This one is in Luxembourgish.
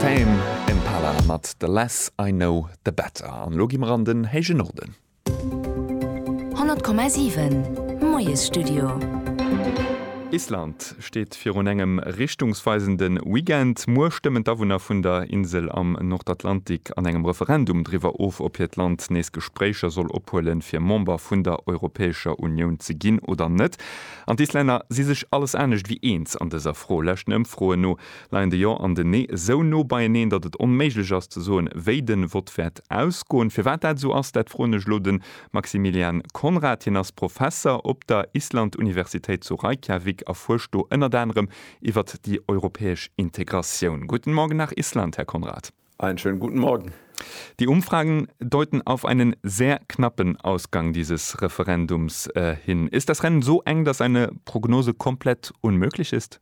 Tame Impala mat The less I know the better. An elo gi mer an den héije Norden. 100,7 Moiesstudio. Island steet virun engem richtungsweisende Weekend. Muer stëmmen d'Awunner vun der Insel am Nordatlantik an engem Referendum driwwer of, ob hiert Land nees Gespréicher soll ophuelen, fir Member vun der Europäescher Unioun ze ginn oder net. An d'Islänner si sech alles anescht ewéi eens an dëser Fro. Leschten Ëmfroen no leien de Jo an den Nee esou no beieneen, datt et onméiglech ass ze soen, wéi de Vott wäert ausgoen. Firwat dat esou ass, dat froen ech elo de Maximilian Conrad. Hien ass Professer op der Island-Universitéit zu Reykjavik a fuerscht do ënnert anerem iwwert déi europäesch Integratioun. Guten Morgen nach Island, Här Conrad. Einen schönen guten Morgen. Die Umfragen deuten auf einen sehr knappen Ausgang dieses Referendums hin. Ist das Rennen so eng, dass eine Prognose komplett unmöglich ist?